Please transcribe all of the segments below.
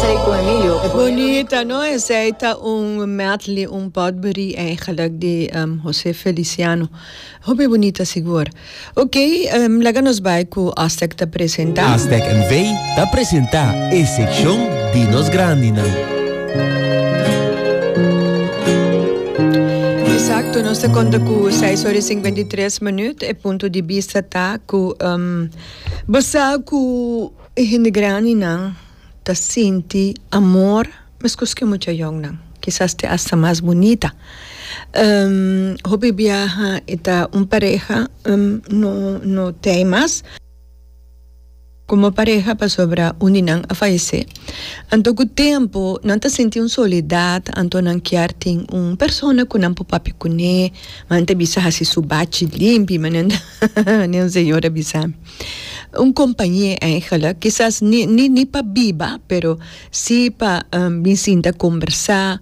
Esey con Emilio. E bonita no esey ta un medley un potpourri eigenlijk di um Jose Feliciano. Hopi bonita sigur. Ok, um laga nos bay cu Aztec ta presenta. Aztec NV ta presenta e seccion di nos grandinan. Exacto, nos ta conta cu seis ora y cincuenta y tres minuut. E punto di bista ta cu um bo sa cu e hende grandinan. ta sinti amor mescos cu e mucha yonnan, kisas te hasta mas bunita. Hopi biaha e ta un pareha no no t'ey mas como pareha pasobra un di nan a fayece, anto cu tempo nan ta sinti un soledad anto nan kier tin un persona cu nan por papia cun'e, ma nan ta bisa haci su bachi limpi manera un señor a bisami. Un compañe eigenlijk, kisas ni ni ni pa biba, pero si pa bin sinta combersa,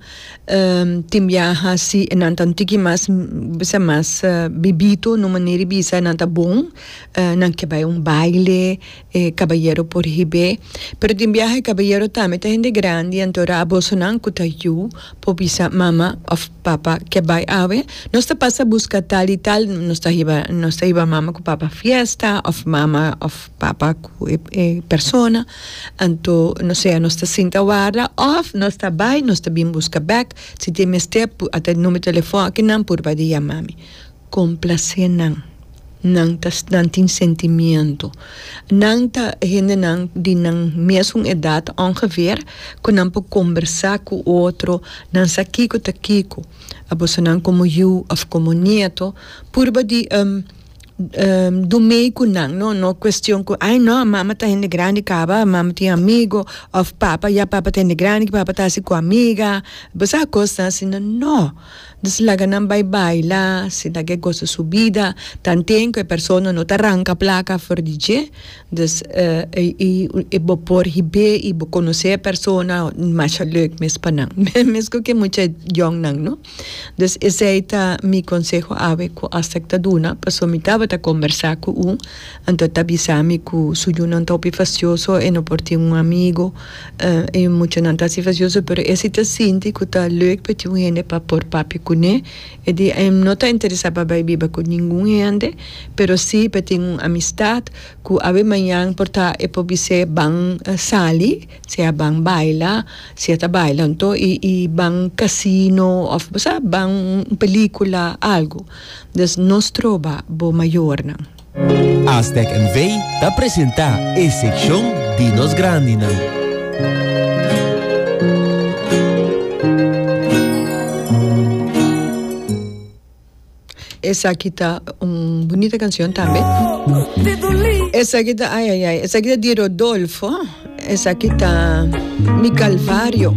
tin biaha si nan ta un tiki mas, bisa mas bibito, no manera di bisa nan ta bon, nan ke bai un baile, e caballero por hib'e, pero tin biaha e caballero tambe ta hende grandi, anto ora a bosonan cu ta yu por bisa mama of Papa ke bai awe, nos ta pasa buska tal i tal, nos ta hiba nos ta hiba mama ku papa fiesta òf mama òf papa ku e e persona, anto no sea nos ta sinta warda òf nos ta bai nos ta bin buska bèk si tin mester pu a ta numero telefòn kinan purba di yama mi. Complacé nan. Nan ta nan tin sentimiento. Nan ta hendenan di nan mesun edad ongeveer cu nan por combersa cu otro, nan sa kico ta kico. A boso nan como yu of como nieto purba di du mey cu nan, no no cuestion cu ay no mama ta hende grandi caba mama tin amigo of papa ya papa ta hende grandi papa ta haci cu amiga, bo sa cosnan asina no. Nos laga nan bai baila, si ta ke goso su bida, tanten ku e persona no ta ranka plaka for di dje, dus i bo por hib'é i bo konosé e persona, masha leuk mes pa nan, mesko ke mucha yòn nan, no. Dus esei ta mi konseho awe ku Astec ta duna, paso mi tabata kombersá ku un. Anto e ta bisa mi ku su yunan ta hopi fasioso, e no por tin un amigu. E muchanan ta hasi fasioso, pero e si ta sinti ku ta leuk pa e tin un hende pa por papia kuné. E di e no ta interesá pa bai biba ku ningun hende, pero si pa e tin un amistat ku awe mañan por ta e por bis'é ban sali, sea ban baila, si e ta baila anto, i ban kasino òf bo sa, ban un pelíkula, algu. Dus nos troba bo mayornan. Aztec NV ta presenta e seccion di nos grandinan. Esaki ta un bunita cancion tambe. Esaki ta ay ay ay. Esaki ta di Rodolfo. Esaki ta Mi Calvario.